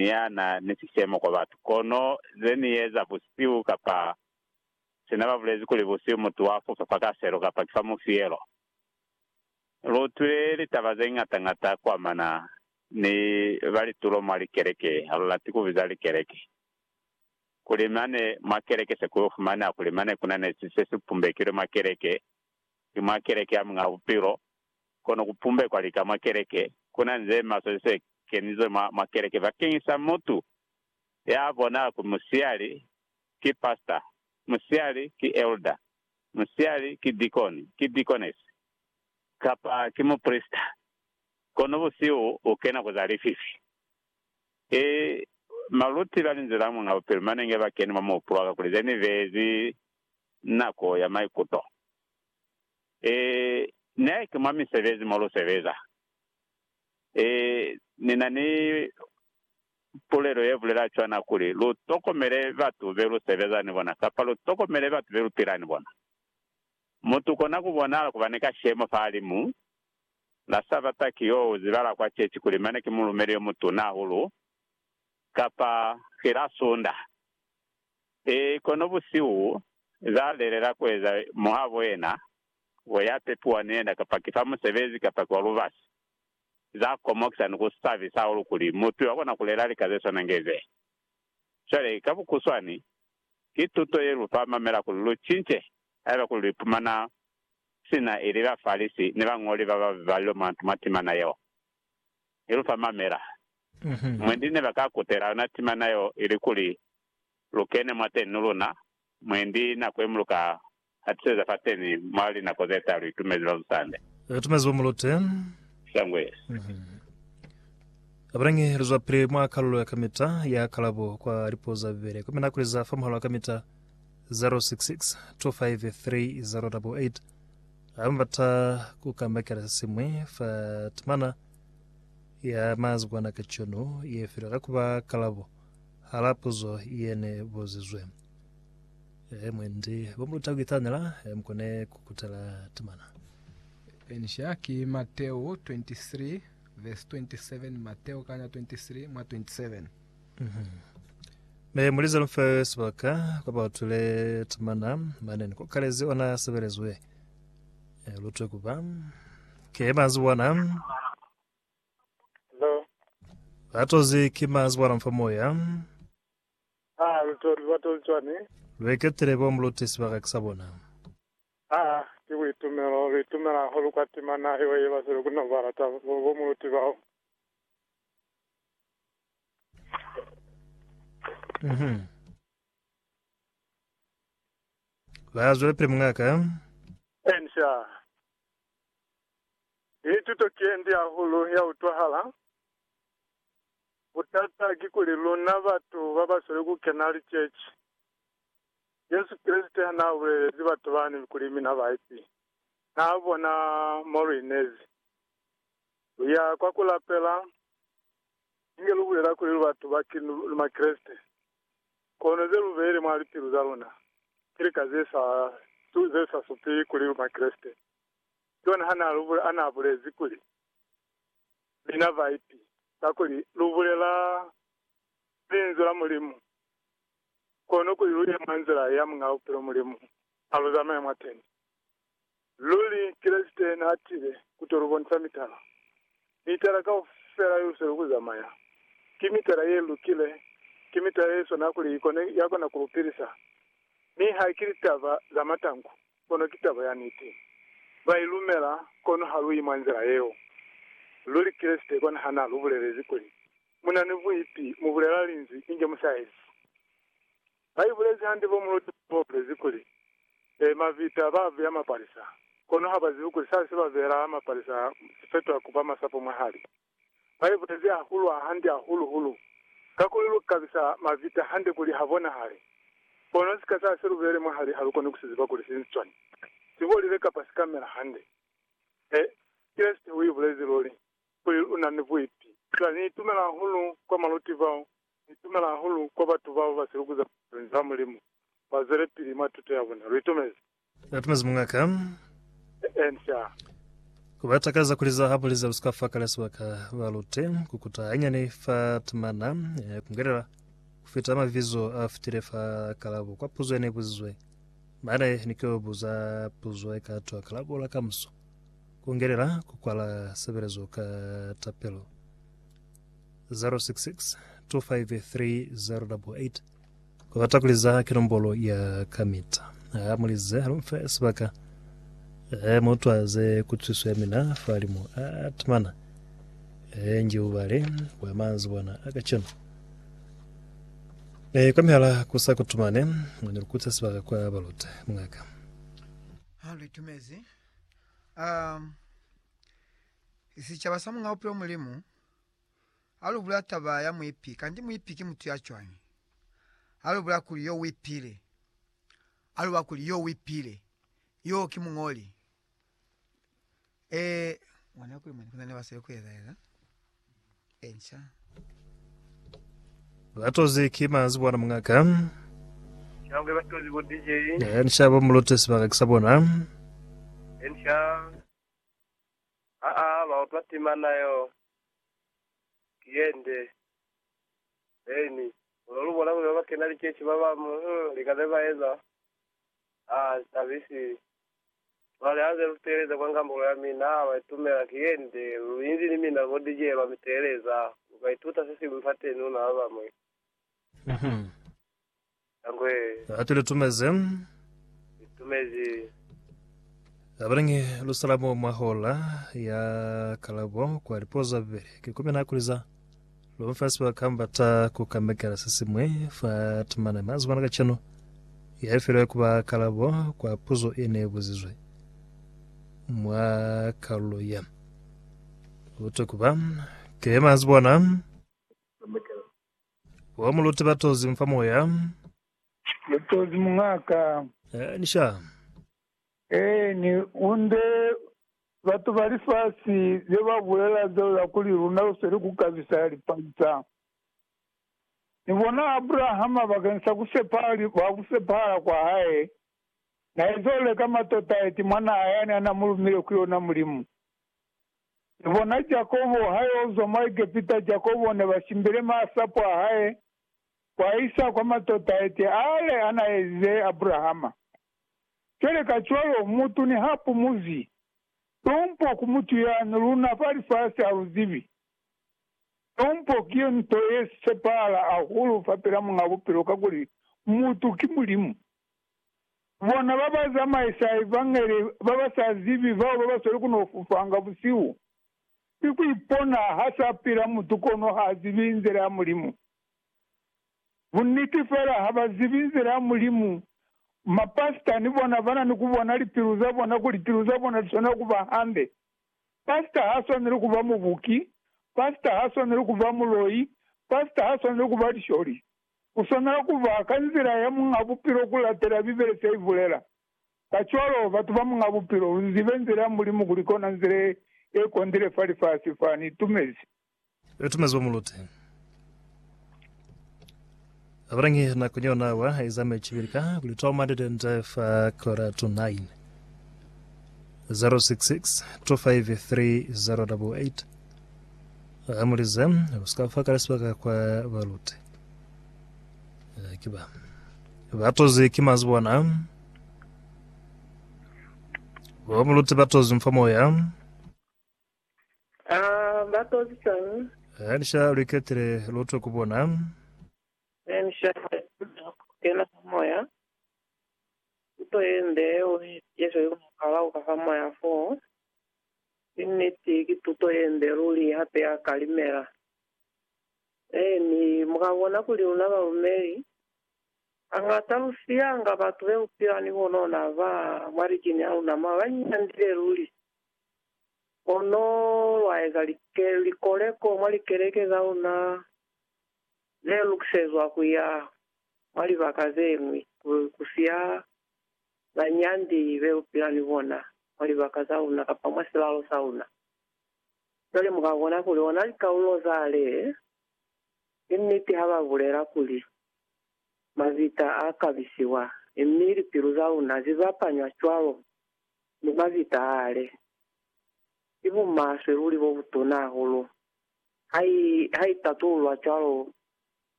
ni ya na ni sishemo kwa batu. Kono ze ni eza busihu kapa sina ba bulezi kuli busihu mutu wa fupa fa kaselo kapa ki fa mufielo. Lu utwile litaba ze ñata ñata ku amana ni ba litulo mwa likeleke, ha lu lati ku biza likeleke, kuli mane mwa keleke se ku yo fumaneha kuli mane ku na ne si se si pumbekilwe mwa keleke, ki mwa keleke ya Muñ'a Bupilo. kono ku pumbekwa lika mwa keleke. Ku na ni ze maswe ze kenizwe mwa, mwa keleke bakeñisa mutu ya bona kuli musihali ki pastor, musihali ki elder, musihali ki deacon, ki deaconess, kapa ki muprisita, kono busihu u kena ku za lififi. I maluti ba linzila mwa bupilo mane nge ba keni mwa muhupulo wa ka kuli ze ni bezi nako ya maikuto. Ee, ne ki mwa misebezi mo lu sebeza. Ee, ni na ni pulelo ye bulela cwana kuli, lu tokomele batu be lu sebeza ni bona, kapa lu tokomele batu be lu pila ni bona. Mutu kona ku bonahala ku ba ni kashemo fahalimu la Sabata ki yo u zibahala kwa ceci kuli mane ki mulumeli yo mutuna hahulu, kapa ki la Sunda. Ee, kono busihu za lelela kueza muhabo yena we ya pepiwa ni yena, kapa ki fa musebezi kapa ki wa lubasi, za komokisa ni ku sabisa hahulu kuli mutu yo akona kulela lika ze swana nge ze. Cwale, ka bukuswani, ki tuto ye lu fa mamela kuli lu cince haiba kuli lu ipumana sina ili Bafalisi ni bañoli ba ba balilwe mwa ntu mwa timana yeo. I lu fa mamela. Mwendi ne ba ka kutela yona timana yeo ilikuli lu kene mwateni ni luna, mwendi nako ye mu lu ka hatiseza fateni mwa linako ze ta lu itumezi long Sunday. Re tumezi bo mulute. Sangwes. Abelangi li zwa pili mwa kalulo ya kamita ya kalabo kwa lipuo za Bibele. Komi na kuliza fa muhalo wa kamita 066 253 088. Haiba mu bata ku kambakela se siñwi fa timana ya mazikwana kacono ye file, ka kuba kalabo. Hala puzo yene buzizwe, He mwendi bo muta kuitanela, he mukone kukutela timana. Enisha ki Mateo 23 vs 27 Mateo kana 23 mwa 27. Ne mulize lufe sibaka kwa bautwile timana mane ni kokalezi ona sebelezwe lutwe kuba ke manzi wana. Hello. Latozi ki mazi bwa lomfa moya. Ah, lutori lwa toli cwani? Lweketile bo mulute sibaka ki sa bona. Ah, ki buitumelo, lu itumela hahulu kwa tima na yo ye basweli ku no ba lata bo, bo muluti bao. Mhm. Ba zwelapili mungaka. Ensha. Ki tuto kindi hahulu ya utwahala. Butata kikuli luna batu babasweli kukena liceci, Jesu Kreste hanaabulelezi batu bani kuli mina baipi, naabona mo luinezi. Luya kwa kulapela, inge lubulela kuli lubatu ba Makreste, kono zelubeli mwa lipilu zaluna ki lika zesa supi kuli lu Makreste. John hanaabulezi kuli, Mina baipi, kakuli lubulela Linzwi la Mulimu, kono kuli luye mwa nzila ya Muñaa Bupilo Mulimu aluzamaye mwateni. Luli, Kreste naatile kuto lubonisa mitala. Mitala kaufela yelusweli kuzamaya, ki mitala yelukile, ki mitala yeswanaa kuli ikona yakona kulupilisa, mi haikili taba zamatanku. Kono ki taba ya niti. Ba i lumela, kono ha lu yi mwa nzila yeo. Luli Kreste kona ha na lu bulelezi kuli, Mu na ni buipi, mu bulela Linzwi, inge mu sa ezi. Ba i bulezi hande bo muluti ba ba bulezi kuli, E, mavita ba beya mapalisa, kono ha ba zibi kuli sa se ba beela mapalisa si fetwa ku ba masapo mwahali. Ba iputezi hahulu hahande hahulu-hulu, kakuli lu kabisa mavita hande kuli ha bonahale. Kono sika sa siluvere mwahali ha lu koni ku si ziba kuli si sicwani, si bolile kapa si ka mela hande. He, Kreste u ibulezi luli kuli u na ni buipi. Cwale ni itumela hahulu kwa maluti bao, ni itumela hahulu kwa batu bao ba si lukuza Linzwi la Mulimu, ba zwelepili mwa tuto ya bona. Lu itumezi? Atumezi mungaka. Ensa. Ku ba takaza kuli za habo liza lu si ka fa kale sibaka ba lute ku kuta hanyani fa timana eh, ku ngelela ku fita mavizo a fitile fa kalabo kwa puzo ne buzizwe. Mane ni ke buza puzo e ka twa kalabo la kamuso. Ku ngelela ku kwala sebelezo ka tapelo. 066 253 088 Ubata kuliza ki nombolo ya kamita. Ha mulize, halumfe sibaka. He mutwaze kutwiso ya mina falimu. A timana. He nji ubale bwa manzibwana a kacenu. E, kwa mihala kusa kutumane, mwa nilukutse sibaka kwa balute. Mungaka. Ha luitumezi. Um, sicaba sa Mungaupi o Mulimu. Ha lu bula taba ya muipi, kanti muipi ki mutu ya cwañi? Ha lu bula kuli yo uipile, ha lu ba kuli yo uipile yoo ki muñoli. Ee, mona kuli mwani ku na ni basweli ku ezaeza e nca. Batozi ki manzi bona mungaka. Shangwe batozi bo DJ. Eh, ni shabo mulute sibaka kisa bona. Ensha. Aa, ba utwa timana yo. ki yende. Eeni. Kono lubona kuli babakena liceshi babañwi, uh, lika zebaeza, ha li tabi si. Cwale, haze luteeleza kwa ngambolo yamina, baitumela, ki yende, luinzi ni mina bo DJ ba miteeleza, lukaituta sesiñwi fateni, luna babañwi. Uh-huh. Litangwe. Ha tu litumezi. Litumezi. Abalingi lusalamo mwa hola ya kalabo kwa lipuo za bubeli. Ki kumi na kuliza. Lomfa siba kamba ta ku kamekela se simwe fa timane mazi mwana kacheno. Ya ifilwe kuba kalabo kwa puzo e ne buzizwe. Mwa kalulo ya. Uto kuba. Ke mazi bona. Kamekela. Wa muluti ba tozi mufa moya. Ni tozi muñaka. Eh, ni sha. Eh, ni unde batu ba lifasi ze ba bulela zeo za kuli luna lu sweli ku kabisa ya lipalisa. Ni bona Abrahama bakeng sa ku sepahala, ba ku sepahala kwa hae, na ezole ka matota eti mwanaa yani a na mu lumile ku yona Mulimu. Ni bona Jakobo hayaozwa mwa Egepita, Jakobo nebashimbile maasapo ahae kuaisa kwa matota ete aale anaaezize Abrahama. Cwale kacwalo, mutu nihapumuzi tumpo ku mutu yani, luna fa lifasi haluzibi. Tumpo ki yo nto yesisepahala hahulu fapila Muñ'a Bupilo, kakuli mutu ki Mulimu. Bona ba ba zamaisa evangeli ba ba sa zibi bao ba ba sweli ku no fufanga busihu. Ki ku ipona ha sa pila mutu kono ha zibi nzila ya Mulimu. Bunniti fela ha ba zibi nzila ya Mulimu. Mapasita ni bona ba na ni ku bona lipilu za bona kuli pilu za bona li swanela ku ba hande. Pasita ha swaneli ku ba mubuki. Pasita ha swaneli ku ba muloi. Pasita ha swaneli ku ba lisholi. Ku swanela ku ba ka nzila ya Muñ'a Bupilo ku latela Bibele se i bulela. Kacwalo, batu ba Muñ'a Bupilo, lu zibe nzila ya Mulimu kuli kona nzila ye ye kondile fa lifasi fa. Ni itumezi. Ni itumezi bo mulute. Abalangi nakong yona awa eza mecibili ka kuli Tom and Dende fa kora to 9. 066 253 088 Hamulize, Usika fa kale sibaka kwa balute. Kiba. Batozi ki mazi bona. Bo muluti batozi mfa moya. Ah, batozi sani. Hanisha lwiketile lotwe kubona. Eni shaka kena moya. Ito yende uri yesho yumukala ukafa moya fo. Inniti ki tuto yende ruli hape ya kalimela. Ee, mi mu ka bona kuli luna balumeli hañata lu siyanga batu be lu pila ni bonona ba mwa likini a luna mwa ba nyandile luli. Kono lwa eza likoleko mwa likeleke za luna ze lukisezwa ku ya mwa libaka ze ñwi ku siya banyandi be lu pila ni bona mwa libaka za luna kapa mwa silalo sa luna. Ba lemuha kona kuli ona likaulo za le. Ki niti ha ba bulela kuli, Mabita a kabisiwa, mi lipilu za luna zi bapanywa cwalo ni mabita a le. Ki bumaswe luli bo butuna hahulu ha i tatululwa cwalo